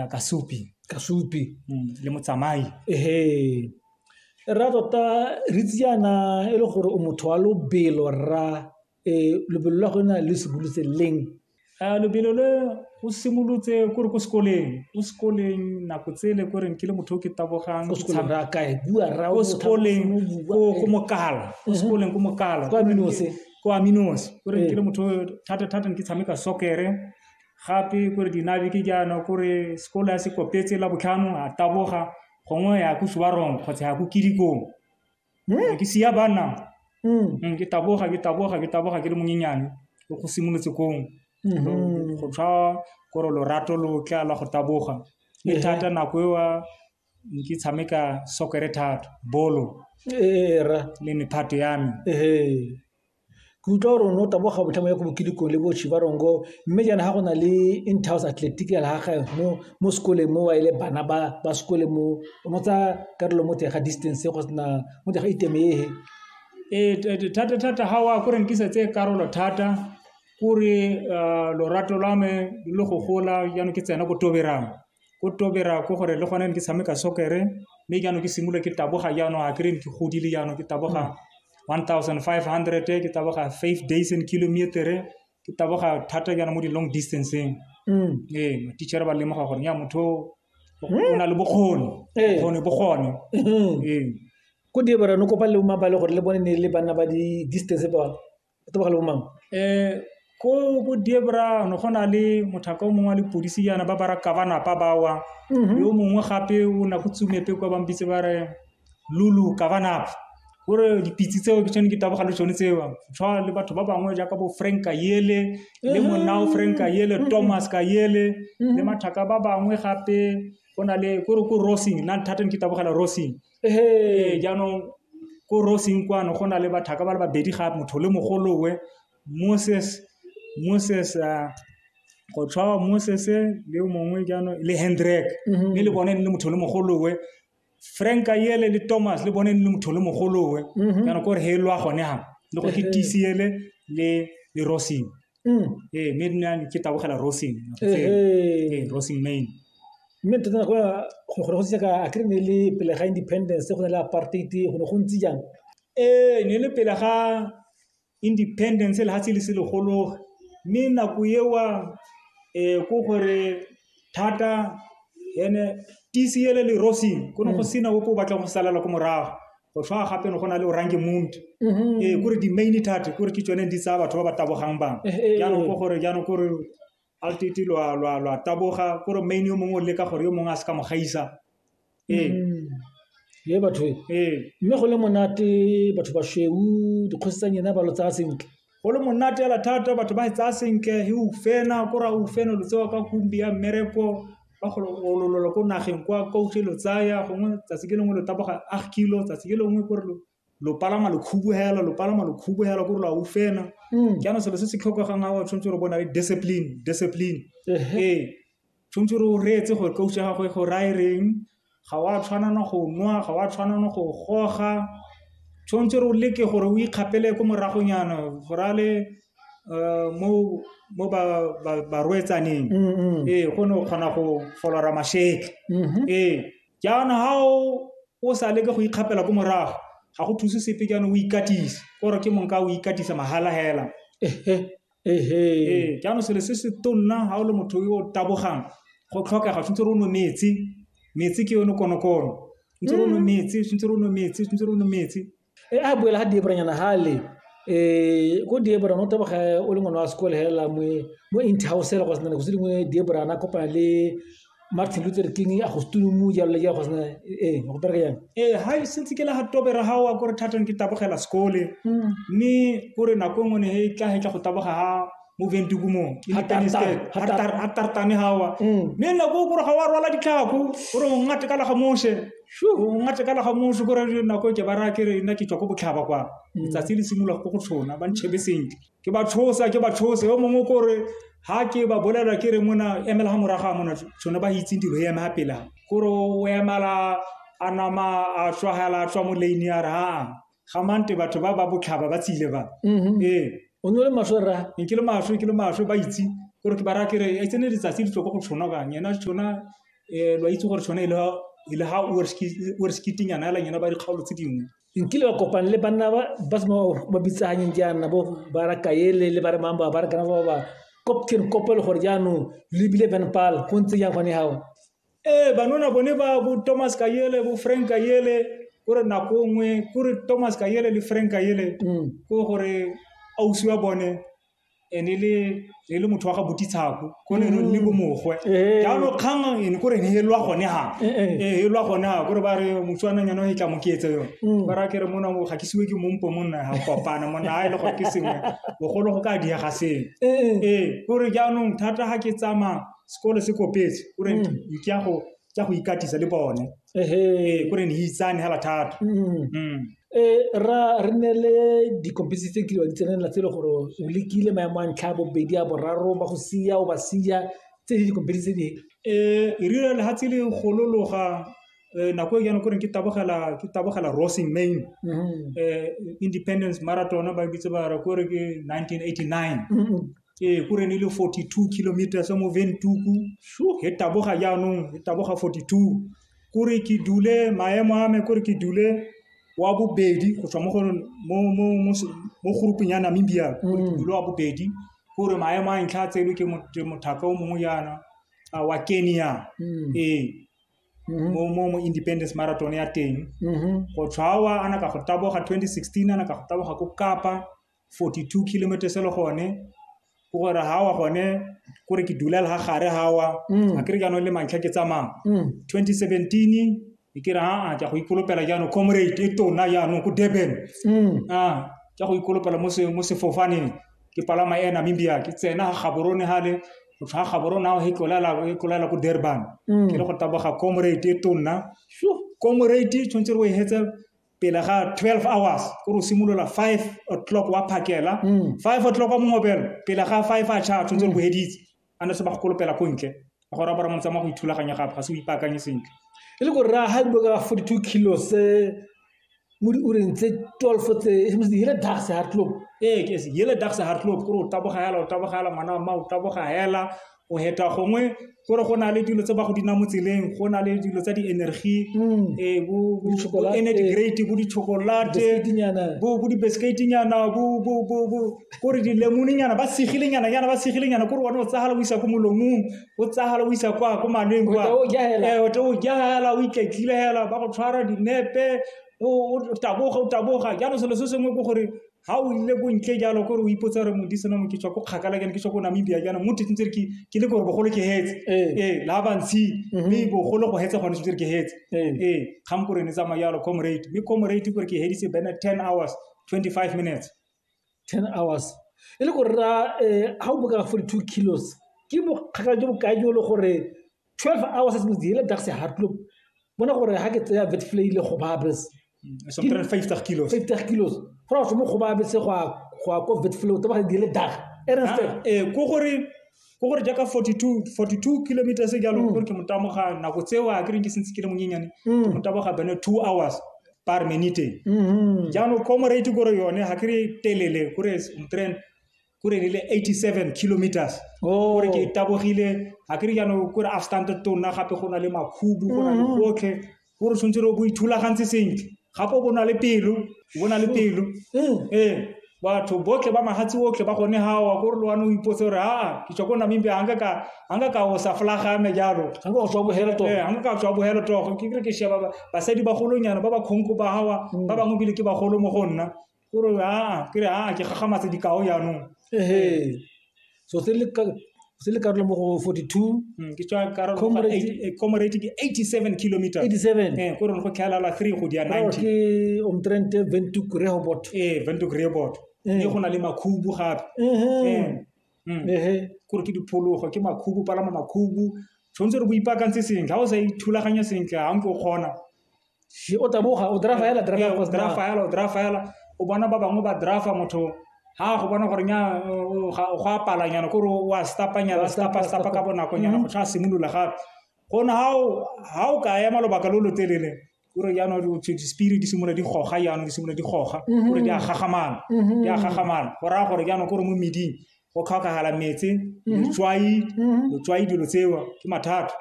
Kasupi. Kasupi. Le motsamai. Ee, rra tota re itse yana e le gore o motho wa lobelo rra um lobelo la go na le simolotse leng? Lobelo le o simolotse ko re ko sekoleng, ko sekoleng nako tsele ko reng ke le motho o ke tabogang ko sekoleng ko mokala ko sekoleng ko mokala ko aminosi ko aminosi ko reng ke le motho thata-thata ke tshameka soccer-e gape ko re dinabiki jaana ko re sekolo ya se kopetse la botlhano a taboga gongwe ya ko subarong kgotsa ya ko kidikong hmm? ke sia banna hmm. hmm, ke taboga ke taboga ke taboga ke le monyenyane o go simolotse kong mm-hmm. go tshwa kore lorato lo tla la go taboga le thata nako eo ke tshameka sokere thata bolo era le mephato ya me ke utlwa gore o ne o taboga botlhamo ya ko bokilikong le boshi ba rongo mme jaana ga go na le intouse athletic ya lagaga mo mo sekoleng mo wa e le bana ba ba sekole mo mo tsa karolo mo teng ga distance go sena mo teng ga itemehe ee thata thata ga wa ko renkisa tse karolo thata kore eh, lorato lwa me lo go gola jaanong ke tsena ko toberang ko Tobera ko gore le gone ke tshameka soccer-e mme jaanong ke simolole ke taboga jaanong a kere ke godile jaanong ke taboga one thousand five hundred ke taboga five days and kilometer-e ke taboga thata jaana mo di-long distance-eng ee ma-teacher ba lemoga gore ya motho o na le bokgoni bokgoni bo gone ee ko Durban o kopa le mabale gore le bone ne le banna ba di-distance ba ke tlogele bo mang ko bo diebra go na le mothaka o mongwe wa lepodisi yana ba bara ka ba napa ba wa yo mongwe gape o na go tsumepe kwa bang bitse ba re lulu ka ba napa gore dipitse tseo ke tsone ke taboga le tsone tseo tshwana le batho ba bangwe jaaka bo frank ka yele le monna o frank ka yele thomas ka yele le mathaka ba bangwe gape go na le ko re ko rosing nna thata ke tabogela rosing ee jaanong ko roseng kwano go na le bathaka ba le babedi ga motho le mogolowe moses moses uh, go tshwawa moses le mongwe jaanong le hendrek mme mhm. le bone le motho le mogolowe frank yele le thomas le bone le motho le mogolowe mhm. jaanong kore he lwa gone ga le go ke tcele le le roseng Ee, mme nna ke tabogela Rosing. Mme tota nako ya go ne go se ka a kry-e ne le pele ga independence go na le apartheid go ne go ntse jang? Ee, ne le pele ga independence lefatshe le se le gologa, mme nako eo ke gore thata ene TCL le Rosing go ne go sena ope o batlang go salela ko morago go tlhoa gape ne go na le orange mount ee kore di-main thate kore ke tsone di tsaya batho ba ba tabogang bangwe Eh, eh, eh. jaanong ko gore jaanong kore altete lwa lwa lwa taboga kore main yo mongwe o leka gore yo mongwe a se ka mo gaisa Ee. Ee, batho e. Ee. Mme go le monate batho ba sweu dikgosi tsa nyena ba lo tsaya sentle. Go le monate hela thata batho ba e tsaya sentle he o fena ko ra o fena lo tsewa ka kumbi ya mmereko ba go ololola ko nageng kwa coach lo tsaya gongwe tsatsi ke lengwe lo taboga ag kilo tsatsi ke lengwe ko re lo lo palama lo khubuhela lo palama lo khubuhela ko lo aufena mm. jaanong selo se se tlhokegang ga o tshwanetse gore bona le discipline discipline ee tshwanetse gore o reetse gore coach ya gago e go raya reng ga wa tshwanana go nwa ga wa tshwanana go goga tshwanetse gore o leke gore o ikgapele ko moragonyana go ra le eh, mo mo ba ba roetsaneng mm, mm. ee go ne o kgona go folora masheke mm-hmm. ee Jaana ha o sa leke go ikgapela ko morago, ga go thuse sepe jaanong o ikatise. Kore ke mong ka o ikatisa mahala hela. Ee, jaanong selo se se tonna ga o le motho yo o tabogang, go tlhokega tshwanetse re o nwe metsi. Metsi ke yone konokono. Ntse re o nwe metsi, tshwanetse re o nwe metsi, tshwanetse re o nwe metsi. e a boela ga diebranyana gale um eh, ko diebra no teboge o le ngwana wa sekole fela mo interhouse fela go sena go se dingwe diebra na kopana le martin luther king a go setulumu jalo le jalo go sena ee go bereka jang ee ga sentse ke le ga tobera ga wa kore thatong ke tabogela sekole mme hmm. kore nako e nngwe ne e tla e tla go taboga ga moveng dikumo a tartane gawa mm. mme nako o kore ga wa rwala ditlhako gore o ngate ka laga mose o ngate ka laga mose kore nako e ke ba raya kere nna ke tswa ko botlhaba kwa mm. letsatsi le simolola ko go tshona ba ntšhebe sentle ke ba tshosa ke ba tshose o mongwe kore ha ke ba bolela ke re mona emela ga moraga mona tsone ba itseng dilo e eme ga pela kore o emala a nama a tswagela a tswa mo lane ya re aa gamante batho ba ba botlhaba ba tsile ba Mhm. ee o ne o le maswe rra ne ke le maswe ke le maswe ba itse gore ke bara kere e tsene letsatsi le tloko go tshwana kang yena tshwana um lwa itse gore tshwana e le ha- e le ha oreskiting yana elang yena ba dikgaolo tse dingwe nkile ba kopane le banna ba ba sema ba bitsanyeng jaana bo ba ra kaele le ba re mang ba ba re kana ba ba kopkere kopelo gore jaanong lebile van pal go ntse jang gone gago ee banona bone ba bo thomas kayele bo frank kayele kore nako nngwe kore thomas kayele le frank kayele mm. ko gore ausi wa bone e ne le motho wa ga botitshako ko ne re le bomogwe mm. eh. jaanong kgang ene kore ne e lwa gone ga eh, eh. ee e lwa gone ga kore ba re motswanang yana e tla mo keetse yone mm. ba ra kere mona mo ga ke siwe ke mompo monna ga kopana monna a e le gore ke sengwe bogolo go ka diega sengwe ee kore jaanong thata ga ke tsamaya sekolo se kopetse o re Mm. ke ya go ke ya go ikatisa le bone ehe ee ko re ne itsane hela thata Mm. Mm. Eh, ra re ne le dikompisi tse kile wa di tsenela tse e le gore o lekile maemo a ntlha a bobedi a boraro ba go sia o ba sia tse di dikompisi tse dingwe um e rile le ga tse le golologa um nako e jana ko reng ke tabogela ke tabogela rosing main Mhm. um independence marathon ba bitse ba re ko re ke 1989 Mhm. ee gore ne le 42 kilometers mo ventuku e taboga jaanong e taboga 42 kore ke dule maemo a me kore ke dule wa bobedi go tswa mo go mo grouping ya namibia kore ke mm. dule wa bobedi kore maemo a ntlha a tselwe ke mothaka o mongwe jaana wa kenya mm. ee mm-hmm. mo mo mo independence marathon ya teng mm-hmm. go tshwawa ana ka go taboga 2016 ana ka go taboga ko kapa forty two kilometers le gone ke gore ha wa gone kore ke dula le ha gare ha wa mm. a kere jaanong le mantlha ke tsamaya 2017 mm. e kere aa ke go ikolopela jaanong comrade e tona jaanong ko durban mm. a ke go ikolopela mo sefofaneng ke palama ya namibia ke tsena ga gaborone gale go tlhwa gaborone ao e tlolela ko durban ke le go taboga comrade e tonna comrade tshwanetse re o e hetse pele ga 12 hours ko re simolola 5 o'clock wa phakela 5 mm. o'clock wa mongobelo pele ga 5 a cha tshwanetse re boheditse a ne se ba go kolopela ko ntle a gore bara motsa mo go ithulaganya gape ga se o ipaakanye sentle e le gore ra ha dilo ka 42 kilos mo di ureng tse 12 tse e mo di hele dags hard club ee ke se hele dags hard club ko re o taboga hela o taboga hela mwana wa ma o taboga hela go heta gongwe gore go na le dilo tse ba go dina mo tseleng go na le dilo tsa di-energy mm. eh, bo energy great bo di-chocolate bo di-biscuitinyana kore dilemoninyana ba segilenyana nyana ba segilenyana kore one o tsagala o isa ko molomong o tsagala o isa kwa ko maleng kwa o jaela eh, o itletlile hela ba go tshwara dinepe o taboga o taboga jaanong selo se sengwe ke gore ga o ile bontle jalo kore o ipotsa gore modisana mo ke tswa ko kgakala kene ke tswa ko namibia jaana mo tetsentse re ke le gore bogolo ke hetse ee eh, la bantshi mhm. mme bogolo go hetse gone setse re ke hetse ee eh. eh, kgang kore ne tsamaya jalo comrade mme comrade kore ke heditse bene ten hours twenty five minutes ten hours e le gore ra ga o boka forty two kilos ke bokgakala jo bokae jo le gore 12 hours since the hele taxi hard loop bona gore ha ke tseya vetflay le go ba bes so 50 kilos 50 kilos fa o mo go ba bes go go ko vetflay o taba di hele dag ere se eh go gore go gore jaaka 42 42 kilometers e jalo gore ke motamoga nako tseo a ke reng ke sentse ke le monyenyane ke motamoga bene 2 hours par minute jaanong comrade gore yone ga kry telele gore tren kore re le 87 kilometers oh. kore ke tabogile ga ke re jaanong kore afstante tona gape go na le makhubu go na le mm. gotlhe gore tshwanetse re bo ithulagantse sentle gape o bona le pelo o bona le pelo mm. ee batho botlhe ba magatsi otlhe ba gone gawa kore le wane o ipotse gore aa ke tswa ko namibia ga nka ka o sa flagame jalo ga nka tswa bogelo togo ga nka ka tswa bogelo togo ke kere ke sheba basadi bagolonyana ba ba kgonko ba gawa mm. ba bangwe bile ke bagolo mo go nna ke re a ke re a ke gagamatse dikao jaanong ehe so se le ka se le karolo mo go 42 Mm, ke tswa karolo Comrade- eight- eh, comrade ke 87 kilometer 87 eh ko re go tlhaelala 3 go di ya Ra re 90 ke omtrente ventuk rehobot eh vento greybot Eh. mme go na le makhubu gape ehe Eh, mm. ehe kore ke diphologo ke makhubu palama makhubu tshwanetse re bo ipaakantse sentle ga o sa ithulaganya sentle ga nke o kgona Di o taboga o drafa hela drafa go drafa hela o drafa hela o bona ba bangwe ba drafa motho ha go bona gore nya go a palanyana kore wa stapanyana stapa stapa ka bonako nyana go tla simolola gape gone ha o ka ema lobaka lo lo telele kore jaanong spirit di simolola di goga jaanong di simolola di goga gore di a gagamana di a gagamana go raya gore jaanong kore mo meding go tlhokagala metsi letswai letswai dilo tseo ke mathata